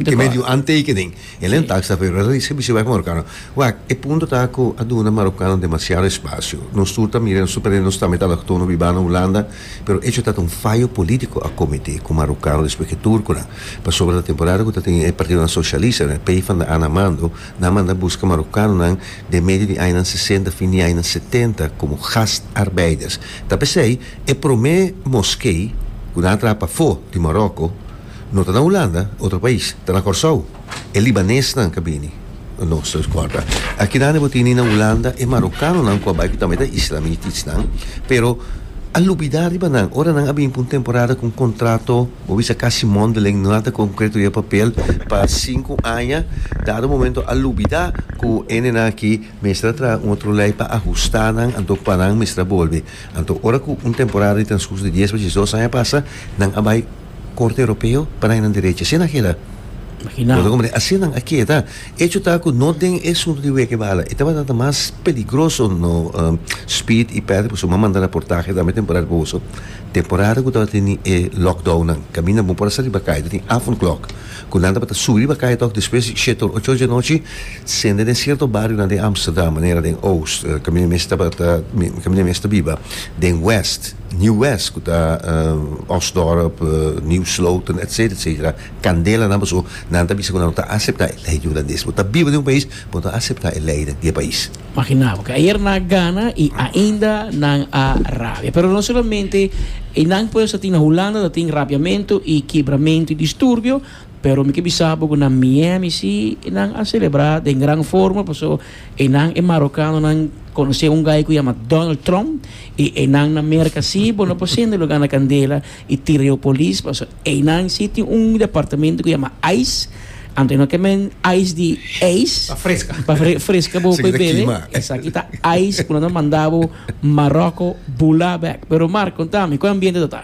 Te medio aantekening. E len taxa fe Reza di Servicio Wèg Marokano, Wak, e punto ta ku a duna Marokano demasiado espasio. Nos tur ta mira i nos tur prende nos tambe ta aloktono bibá na Hulanda, pero echo ta ta un fayo polítiko a kometé ku Marokano despues ku e turkunan. Pasobra na temporada ku ta tin e partidonan sosialista, na e PvdA na mando, nan a manda buska Marokanonan den medio di añanan sesenta fin di añanan setenta komo gastarbeiders. Ta p'esei e promé moskei ku nan a traha pafó di Maroko, No ta na Hulanda, otro pais, ta na Kòrsou. E libanesnan ka bini na nos transkòrda. Akidandi bo tini na Hulanda e marokanonan ku a bai ku tambe ta islamiticsnan, pero a lubidá riba nan. Ora nan a bin pa un temporada ku un kontrato, bo bisa kasi mondeling, no nada konkreto riba papel, pa sinku aña, dado momento a lubidá ku e nennan aki mester a traha un otro lei pa ahustá nan, anto pa nan mester a bolbe. Anto ora ku un temporada di transkurs di dies pa djesdos aña pasa, nan a bai. Corte Europeo pa nan e nan derecha. Asina keda. Imagina. Así nan a keda. Echo ta ku no den e suntu di weke bala. E tabata ta mas peligroso no um, Speed i Patrick pasobra m'a manda raportahe dame temporada di boso. Temporada ku tabata tene e lockdown nan. Kaminda bo por a sali bakay. Ta tin afon klok ku nan tabata suri di bakay tòg despues di shetor ocho di anochi sende den sierto barionan den Amsterdam manera den Oost, kaminda mi esta, kaminda mi esta biba den West. New West ku ta Osdorp, New Sloten etcetera etcetera kandela nan paso nan ta bisa ku nan no ta asepta e lei di hulandes bo ta biba den un pais bo ta asepta e lei den e pais. Magina bo ke ayer nan a gana i ainda nan a rabia pero no solamente e nan ku ellos ta tin na Hulanda ta tin rabiamento i kebramentu i disturbio pero mi ke bisa bo ku na Miami si nan a celebra den gran forma paso Enan e marokanonan konosé un gai ku yama Donald Trump i enan na merka si bo no por sende lugá na kandela i tira yu polis paso enan si tin un departamentu ku yama ice anto e no kem'e ice di ijs Pa freska. pa fre- freska bo Esaki ku e ta bebe kima. esaki ta ice ku nan ta manda bo Maroko bulá bèk pero Mark kontami kon ambiente ta ta.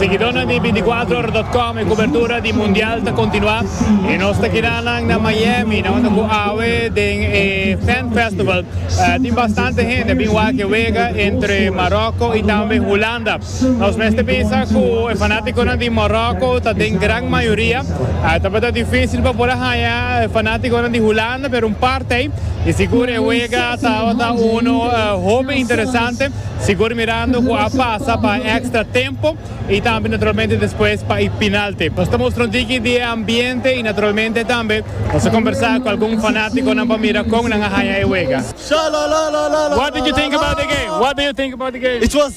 Seguidónan di binticuatrohoradotcom e cobertura di Mundial ta continua y nos ta keda nan na Miami nan unda cu awe den e Fan Festival tin bastante hende a bin wak e wega entre Maroko y tambe Hulanda. Nos mester bisa cu e fanaticonan di Morocco ta den gran mayoria. Tabata dificil pa por a haña e fanaticonan di Hulanda, pero un parte ey. Y sigur e wega tabata un hopi interesante, sigur mirando cu a pasa pa extra tempo y tambe naturalmente despues pa e pinalte. Nos ta mustra un tiki di e ambiente y naturalmente tambe nos a combersa cu algun fanaticonan pa mira con nan a haña e wega. What did you think about the game? What do you think about the game?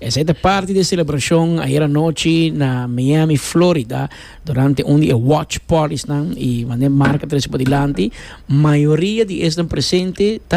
Esei ta parti di e selebrashon ayer anochi na Miami, Florida, durante un di e watch partysnan i mane marka trese pa dilanti, mayoria di esnan presente ta